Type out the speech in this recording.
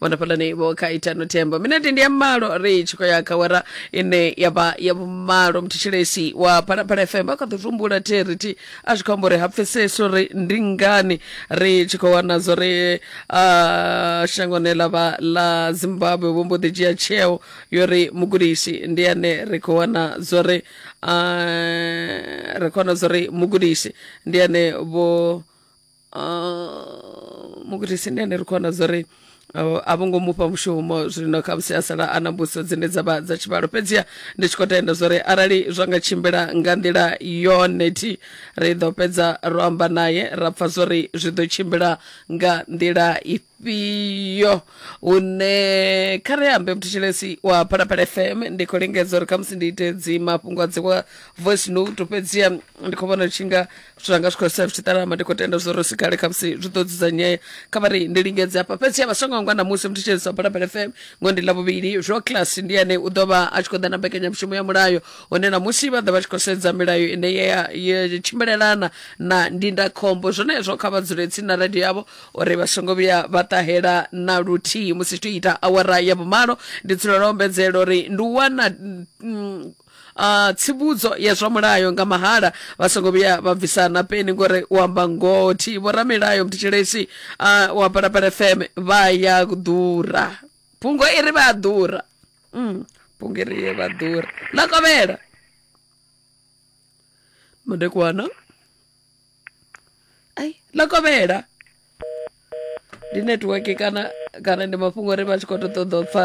vhona fhalani vho kha itano thembo minete ndi ya malo ri tshi khou ya kha wera ine ya vha ya vhumalo mthetshelesi wa phalaphala fm a kha ḓo tumbula therithi a zwi khou amba uri ha pfesesi uri ndi ngani ri tshi khou wana zwo ri ah, shangoni ḽa vha ḽa zimbabwe vho mbo ḓi dzhia tsheo yo ri mugudisi ndi ane ri khou wana zwo ri ah, ri khou wana zwo ri mugudisi ndi ane vho uh, mukuti tsindi ane ri khou wana zwa uri uh, a vho ngo mufha mushumo zwino khamusi a sala a na mbudziso dzine dza vha dza tshivhalo fhedziha ndi tshi khou tenda zwa uri arali zwa nga tshimbila nga nḓila yone thi ri ḓo fhedza ro amba naye ra pfa zwa uri zwi ḓo tshimbila nga nḓila ifhio fhio hune kha ri ambe mthetshelesi wa phalaphala fm ndi khou lingedza uri khamusi ndi ite dzi mafhungo a dzi wa voice note fhedziha ndi khou vhona tshi nga zwithu zwanga zwi khou sa zwi tshi ṱalama ndi khou tenda zwo ri si kale khamusi zwi ḓo dzudzanyea kha vha ri ndi lingedze hafha fhedziha vha songo angwa ṋamusi mthetshelesi wa phalaphala fm ngo ndi ḽavhuvhili zwo class ndi ane u ḓo vha a tshi khou ḓa na mbekanyamushumo ya mulayo hone ṋamusi vha ḓa vha tshi khou sedza milayo ine ya ya tshimbilelana na ndindakhombo zwenezwo kha vha dzule tsini na radio yavho uri vha songo vhuya vha ṱahela na luthihi musi tshi ita awara ya vhumalo ndi dzulela ombedzela uri ndi u wana mm, Uh, tsivhudzo ya zwa mulayo nga mahala vha songo vhuya vha bvisa na peni ngori u amba ngoho thi vhoramilayo mthetshelesi uh, wa palapala fm vha ya ḓura phungo i ri vha ḓura mm, phungo i ri ye vha ḓura ḽa kovhela madekwana ai ḽa kovhela ndi network kana kana ndi mafhungo uri vha tshi khou ṱoḓa u pfha